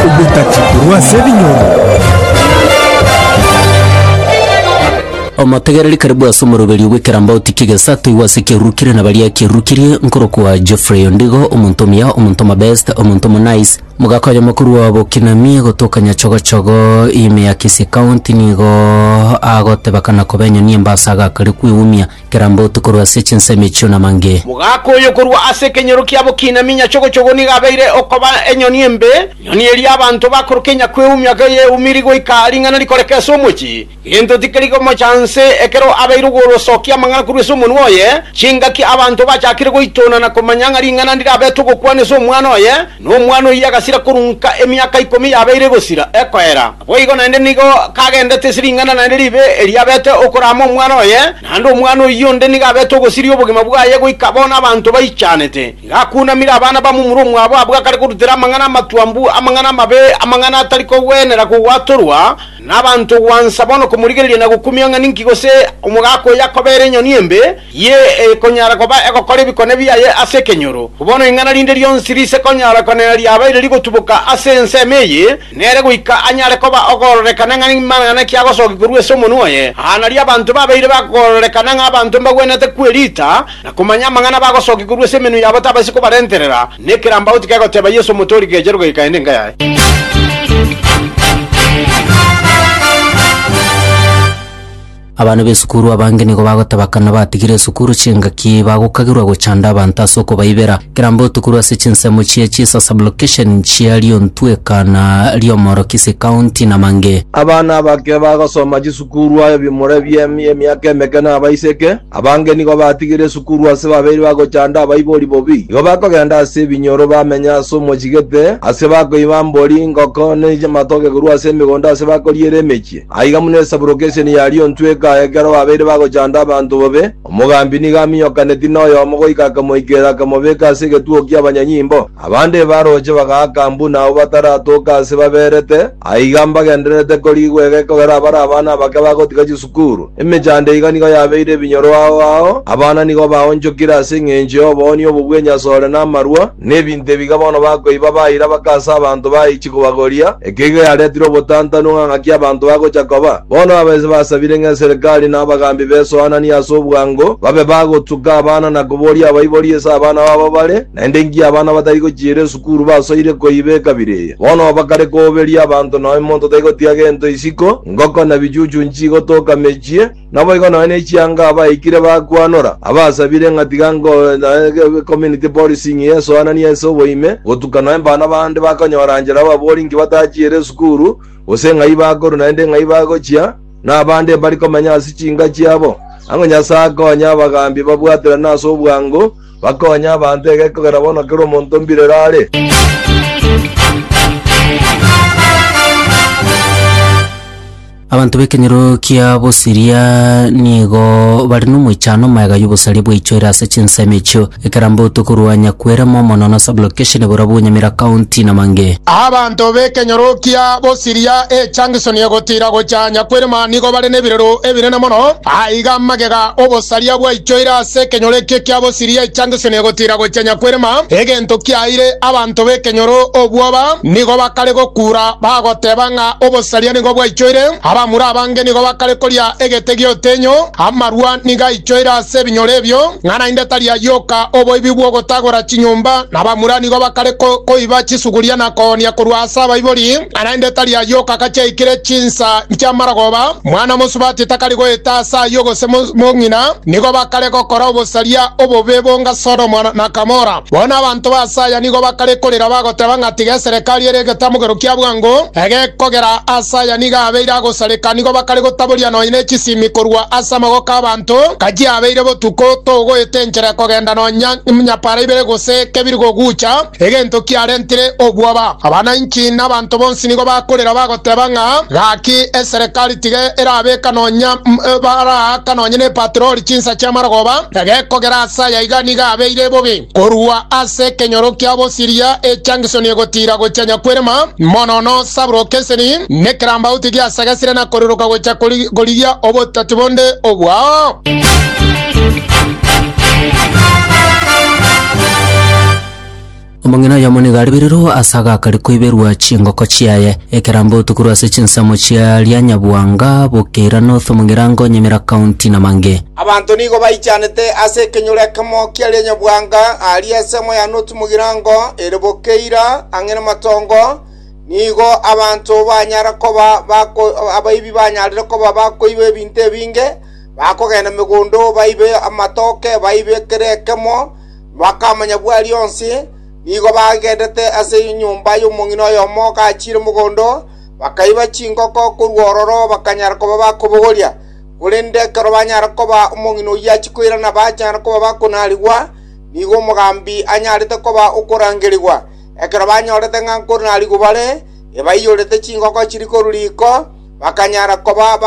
Obotati korwa ase ebinyoro. Omotegereri karibu ase omoroberio bw'ekerambauti ki'egesato igwa ase ekiarurukire na baria kiarurukirie, nkorokwa Geoffrey Ondigo, omonto omuya, omonto omobest, omonto omonaice, mogaka oyomo korwa Bokinamie gotoka Nyachogochogo, ime ya Kisii County, nigo agoteba kana koba enyoni embe ase agakare kwegumia. Kera mbotuko rwe ase chinsemo echio namange. Mogaka oyo korwa ase ekenyoro kiabo kiinaminya chogochogo nigo abeire okoba enyoni embe, enyoni eria abanto bakoroka enyakweumia geyeumiri goika ring'ana rikoreke ase omochie. Gento tikeri gomocha nse ekero abeire ogorosokia amang'ana korwa ase omonwa oye, chingaki abanto bachakire goitona na komanya ng'a ring'ana ndirabete ogokwana ase omwana oye, Na omwana oyio agasira korunka emiaka ikomi yabeire gosira ekoera, naboigo naende nigo kagendete ase ring'ana naende ribe erio abete okoraama omwana oye, naende omwana oyio onde nigo abete ogosiria obogima bwaye goika bono abanto baichanete. Nigo akunamire abana bamomura omwabo abwo akare korutera amang'ana amatwambu, amang'ana amabe, amang'ana atari kogwenera kogwatorwa nabanto gwansa bono komorigereria na gokumia ng'a ninki gose omogaka oyo akobera enyoni embe, Ye ekonyara koba egokora ebikone biaye ase ekenyoro. Bono ing'ana rinde rionsi riise konyara konena riabeire rigotuboka ase ensemo eye, nere goika anyare koba ogororekana ng'a nimang'ana ki agosokia korwa ase omonwa oye. Aa nario abanto babeire bagororekana ng'a abanto mbagwenerete kwerita na komanya amang'ana bagosokia korwa ase emenwa yabo tabaisi kobarenterera nekerambaoti kegoteba Yeso omotoori geche rogei kaende enka yaye. Abana b'esukuru abange nigo bagoteba kana batigire esukuru chingaki bagokagerwa gochanda abanto ase okobaibera. Kirambe otukorwe ase chinsemo chiaye chisa sublocation nchia Liontwe, Ekana, Liomoro, Kisii County na mange. Abana abake bagosoma chisukuru aye bimura ebiemia emiaka emeke na abaiseke abange nigo batigire esukuru ase babeire bagochanda abaibori bobi. Nigo bakogenda ase ebinyoro bamenye ase omochigete ase bakoiba mbori, ngoko, ne amatoke korwa ase emegondo ase bakoriera emechie. Aiga buna esaburoka esia nigo aria ontweka ekero babeire bagochanda abanto bobe, omogambi nigo aminyokaneti noyomo goika akamoikera akamobeka ase egetugo ki'abanyanyimbo. Abande ebarooche bagaaka buna abwo bataratoka ase baberete, aiga mbagendererete korigwa ege ekogera abare abana abake bagotiga chisukuru. Emechando iga nigo yabeire ebinyoro ao ao, abana nigo baonchokire ase engencho y'oboonio obo bw'enyasore na amarwa, Nebinto ebiga bono bakoiba baira bakansa abanto baichi kobagoria. Eke iga yaretire obotantanu ng'a ng'aki abanto bagocha koba. Bono abaise basabire ng'a eserekari na abagaambi besoananie ase obwango, babe bagotuka abana na koboria abaibori ase abana babo bare, naende inki abana batari gochiira esukuru basoire koiba ekabira eye. Bono bakare koberia abanto nonya monto taigotiga gento isiko, ngoko na bichuchu nchigotoka mechie, Naboigo nonya ne chianga abaikire bakwanora, abasabire ng'a tiga ngoe community policing eye esoananie ense oboime, gotuka nonya mbano bande bakonyora nchera ababori inki batachiire esukuru, gose ng'ai bakorwa naende ng'ai bagochia, na abande mbari komenya ase chinka chiabo. Ang'o Nyasae akonye abagaambi babwaterane ase obwango, bakonye abanto egekio kera bono kera omonto mbirero are. Abanto b'ekenyoro kia Bosiria nigo bare nomoichano omoega y'obosaria bwaichoire ase chinsemo echio, ekeramboto korwa Nyakwere momono na sublocation boria bwo Nyamira County na Mange. Abanto b'ekenyoro kia Bosiria echunction egotira gocha Nyakwere ma nigo bare nebirero ebinene mono. Aiga magega obosaria bwaichoire ase ekenyoro ekio kia Bosiria echunction egotira gocha Nyakwere ma. Egento kiaeire abanto b'ekenyoro obwoba nigo bakare gokura bagoteba ng'a, Obosaria nigo bwaichoire, abamura abange nigo bakare koria egete gi'otenyo, amarua nigo aichoire ase ebinyoro ebio, ng'a naende tari ayioka oboibi bw'ogotagora chinyomba, na abamura nigo bakare koiba chisuguria na koonia korwa ase abaibori, ng'a naende tari ayioka gachiaikire chinsa chi'amaragoba. Mwana mosubati takari goeta ase ayio gose mong'ina, nigo bakare gokora obosaria obobe bonga Sodomo na Gamora. Bono abanto b'aase aya nigo bakare korera bagoteba ng'a tiga eserekari ere egetamogero kia bwango egekogera aase aya nigo abeire agosareka, nigo bakare gotaboria nonya ne chisimi korwa ase amaboko 'abanto, ng'a chiabeire botuko togoeta enchera ekogenda nonya nyapaara ibere gose kebiri gogucha egento kiarentire obwoba. Abananchi na abanto bonsi nigo bakorera bagoteba. Teba ng'a, Gaki, eserekari tiga erabeka nonya baraaka nonya nepatroli chinsa chi'amarogoba, egekogera ase aya iga nigo abeire bobe. Korwa ase ekenyoro kia bosiria echangisoni egotiira gochia nyakwerema, mono nosaburoka eseni, nekerambauti giasagasire na koriroka gochia korigia obotati bonde obwao. Omong'ina oyomo nigo aribirirwe ase agakari koiberwa chingoko chiaye. Ekerambe otukurwe ase chinsemo chia Rianyabwanga, Bukeira North, Mugirango, Nyamira County na mangĩ. Abanto nigo baichanete ase ekenyoro ekemo kia Rianyabwanga aria ensemo ya North Mugirango ere Bukeira ang'e namatongo, nigo abanto banyara koba bako abaibi banyarire koba bakoiba ebinto ebinge, bakogenda megondo baibe amatoke, baibe kera ekemo, Bakamanya bwari onsi nigo bagenderete ase enyomba y'omong'ina oyomo gachiire mogondo, bakaiba chingoko korwa ororo bakanyara koba bakobogoria. Korende ekero banyare koba omong'ina oyio achia koirana bachare koba bakonarigwa, nigo omogambi anyarete koba okorangerigwa. Ekero banyorete ng'a nkonarigwa bare, ebaiyorete chingoko chiria korwa riko, bakanyara koba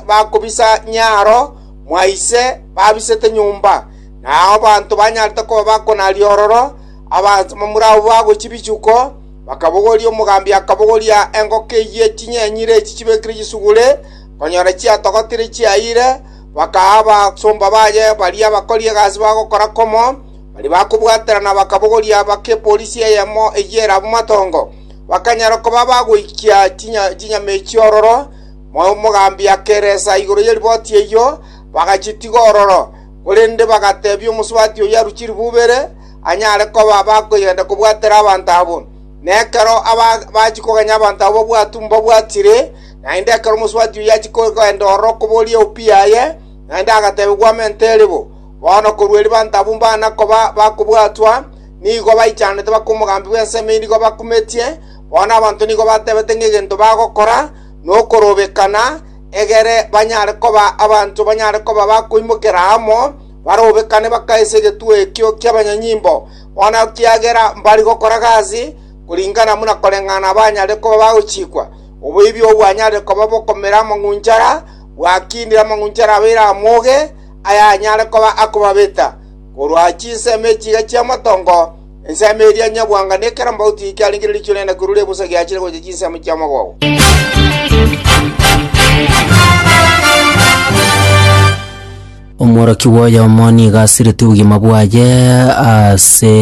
bakobisa nyaaro mwa ise babisete nyomba. na abanto banyarete koba bakonari ororo, abamura abwo bagochia bichuko, bakabogoria omogambi akabogoria engoko eyio chinyenyire echi chibekire chisugure, konyora chiatogotire chiayire, bakaa abasomba baye baria abakori egasi bagokora komo, baria bakobwaterana bakabogoria bake epolisi eyemo eyio ere abwo matongo. Bakanyara koba bagoikia chinyama echio ororo, mogaambi akeresa igoro ye riboti eyio, bagachitiga ororo. Korende bagateebia omosubati oyio arue chilifu ibere, anyare koba bakoyenda kobwatera abanto abwo. Na ekero bachia kogenya abanto abwo obwato mbabwatire, naende ekero omosubati oyio achia kogenda ororo koboria eupi yaye, naende agateebia, Gwamente ere bo. Bono korwa erio abanto abwo mbana koba bakobwatwa, nigo baichanete baka omogambi bw'ensemo eyio nigo bakumetie, bono abanto nigo batebete ng'egento bagokora, nokorobekana, egere banyare koba abanto banyare koba bakoimokera amo, barobekane bakaise egetuo ekio ki'abanyanyimbo, bono ekiagera mbari gokora gasi koringana buna koreng'ana banyare koba bagochikwa. Oboibi obwo bwanyarire koba bokomera amang'unchara, bwakindire amang'unchara abeire amoge, ayanyare koba akobabeta korwa chinsemo echiga chi'amatongo, Ensemo eria nyabwanga ne kera mbauti ekiarengeire riicho riane na kwirure ebusa giachire gocha chinsemo chi'omogogo. omworoki bw'oyomo nigo asireti obogima bwaye ase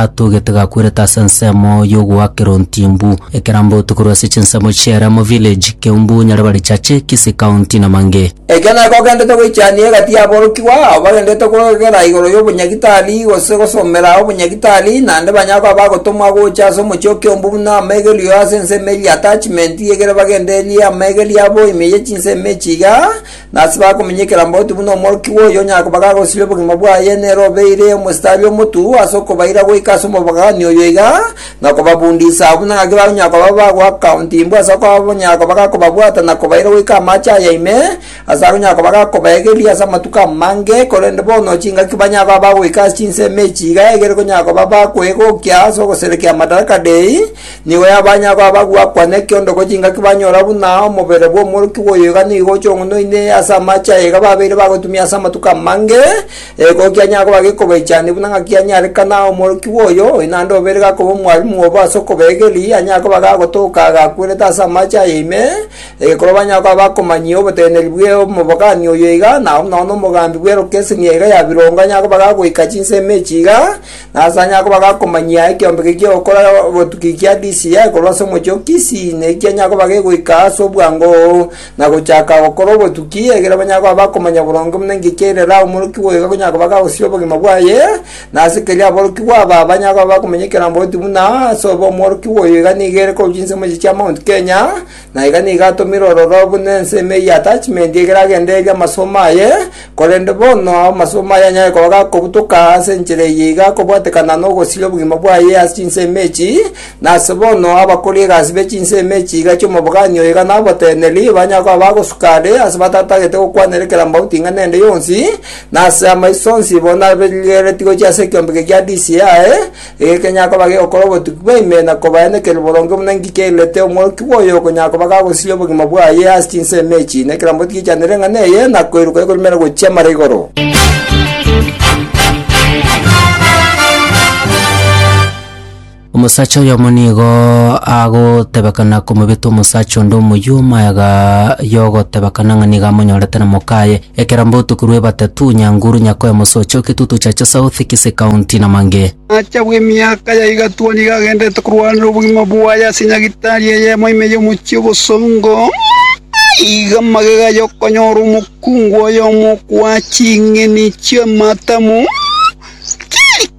atogete gakwerete ase ensemo y'ogoakera ontimbu ekerambauti korwa ase chinsemo chi'eremo village keumbu nyaribari chache kisii county na mange Ekio nekio ogendete goichania egati y'aborokigwa ao bagendete kogera igoro y'obonyagitari gose gosomera obonyagitari, naende banyare koba bagotomwa gocha ase omochie o Kiombu buna amaigerio ase ensemo eria attachment egere bagendererie amaigerio abo ime ye chinsemo echi iga, na ase bakominyekera mbauti buna omorokigwa oyo onyare koba gagosiria obogima bwaye nere obeire omositari omotu ase okobaira goika ase omobogani oyo iga, na kobabundisa agwo, na gaki bagonyara koba bagoakauntimbwa ase okonyara koba gakobabwata na kobaira goika amache aya ime, ase agonyara koba gakobaegeria ase amatuko amange, korende bono chingaki banyare koba bagoika ase chinsemo echi iga egere konyara koba bakwegokia ase ogoserekia Madaraka Dei, nigo ya banyare koba bagoakwa nekiondoko chingaki banyora buna omobere bw'omworokigwa oyo iga nigo ochong'unoine ase amache aya iga babeire bagotumia ase amatuko amange, Ego kianyara koba gekobaichaneku, na ng'aki anyare kana omorokigwa oyo, oyo naende obeire gakoba omwarimu obo ase okobegeria, anyare koba gagotoka agakwerete ase amache aya ime, egekorwa banyare koba bakomanyia oboteneneri bwe omobogani oyo iga, nao buna bono omogambi bw'erokeseni eye iga ya birongo anyare koba gagoika chinsemo echi iga, na ase anyare koba gakomanyia ekeombeke ki'ogokora botuki kia DCI korwa ase omochie o Kisii, naki kianyare koba gegoika ase obwango. na gochaka gokora obotuki, ekiagera banyare koba bakomanya boronge buna inki kiairera omorokigwa oyo gakonyara koba gagosia obogima bwaye, na ase keria aborokigwa aba banyare koba bakomanya ekerombwa oti buna ase obe omworokigwa oyo iga nigo ere korwa chinsemo echi chia Mount Kenya, na iga nigo atomire ororo buna ensemo eye attachment ekero agendereria amasomo aye, korende bono amasomo aye anyare koba gakobutoka ase enchera eye iga akobwatekana nogosiria obogima bwaye ase chinsemo echi, Nase bono abakori egasi be chinsemo echi iga chi'omobogani oyo iga naboteneri, banyare koba bagosuka are ase batatagete gokwanera ekerambaoti ing'ana ende yonsi, na ase amaiso onsi bo nabarigereretie gochia ase ekiombeke gia DCI, iga ekenyare koba gegokora obotuki bwa ime na kobaenekeri boronge buna inki kiairete omworokigwa oyo okonyara koba gagosiria obogima bwaye ase chinsemo echi, na ekeramboti giachanere eng'ana eye, na koiroka ekorumera gochia mara igoro. Omosacha oyomo nigo agotebekana komobeta omosacha onde omoyuoma yaga yogotebekana ng'a nigo amonyorete na mokaye, ekero mbotuko rw'ebatatu, Nyanguru, Nyakoya, Mosocho, Eketutu Chacha South, Kisii County na mangĩ. Omosacha bw'emiaka ya igati oo nigo agenderete korwanera obogima bwaye ase nyagitari eyemo ime y'omochie o Bosongo. Iga magega aye okonyora omokungu oyomo okoa ching'eni chi'amatamu.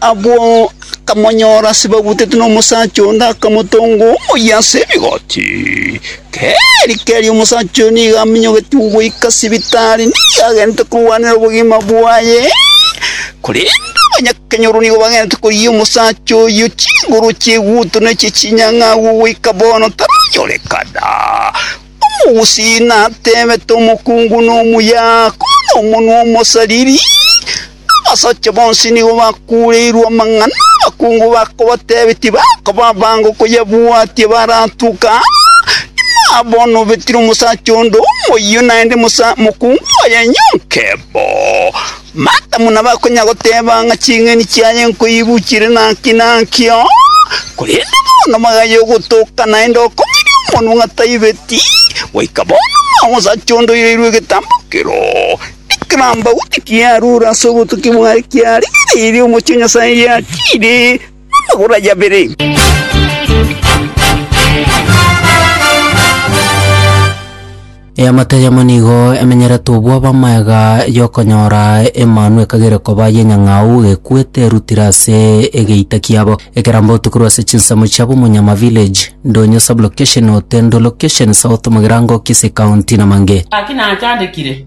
Abwo akamonyora ase babutetwe nomosacha onde, akamotonga omoyia ase rigoti. Keri keri omosacha oyo nigo aminyogetigwe goika sibitari, nigo agentete korwanera obogima bwaye. Korende abanyakenyoro nigo bagentete korigia omosacha oyio chinguru chieguto na echie chinyang'a agwo goika bono taranyorekana. Omogusii natebete omokungu nomuya, kore nomonwa omosariri. Abasacha bonsi nigo bakuureirwe amang'ana, abakungu bakabatebia tibakaba abange okoyabwatia baratuke aa. Inwe bono obetire omosacha onde omoyio naende mokungu oye nyonke bo, matamwa nabakonya goteba ng'a ching'eni chiaye nkoibuchire naki naki oo, korende bono bagaya ogotoka naende okomoiria omonwa ng'a taibeti, goika bono omosacha onde oireirwe egetambo kero. Ekerambagu ekiarure ase obotuki bwaye kiarigereirie omochie o Nyasae, giatiire amagoro aye abere. Eamate eyemo nigo emenyeretwe obwabo amagega y'okonyora Emanu ekagere koba y'enyang'au ekwete erutire ase egeita kiabo. Ekerambagu tokorwa ase chinsemo chia Bomonyama Village, Ndonyo Sub-location, Otendo Location, South Mugirango, Kisii County na Mange. Gaki nachandekire.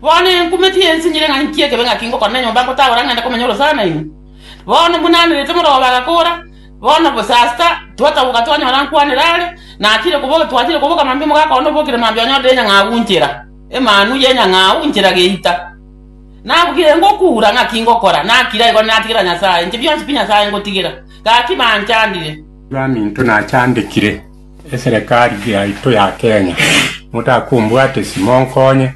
Bono enkumeti yensinyire ng'a inki ekebe ngaki ngokora na enyomba ngotagora ngende komenya orosana nainwe. Bono buna anerete omoroo obo agakora, bono bosasta twataboka twanyora nkwanera are, natire koboka twatire koboka mambia omogaka one obokire mambia onyorire enyang'au nchera, emanu y'enyang'au nchera geita. Nabugire ngokura ng'aki ngokora, nakira igoro natigera Nyasae, inche bionsi pi Nyasae ngotigera, gaki banchandire. Baminto nachandekire, Eserekari yaito ya Kenya, motakombwate isi monkonye,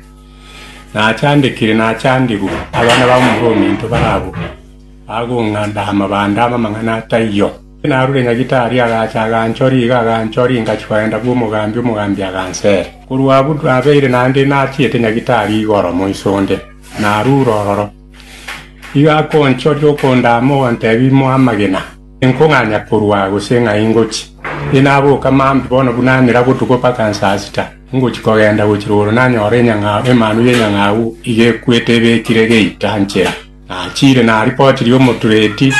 nachandekire nachandigwe abana bamomura ominto barabwo bagong'anda amabande amang'ana ataiyo. Narure Nyagitari agacha aganchoria iga aganchoria ingachia koenda bw'omogambi omogambi agansera. Korwa abwo nabeire naende nachiete Nyagitari igoro moiso onde, narure ororo. Igo akonchoria okondaama ogontebia imo amagena. Inkong'anya korwa aa gose ng'a ingochi, inaboka maambi bono buna amera botuko mpaka nsasita, ingochi kogenda gochia rogoro nanyore enyang'au, emanu y'enyang'au iga ekwete ebekire geita nchera. Nachiire naripotirie omotureti,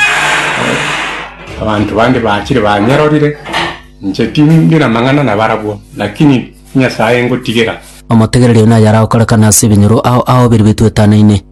abanto bande bachire banyerorire, inche tindi namang'ana nabarabwo, lakini Nyasae ingotigera. Omotegereria oyo nayare agokorekana ase ebinyoro ao ao biria bituetanaine.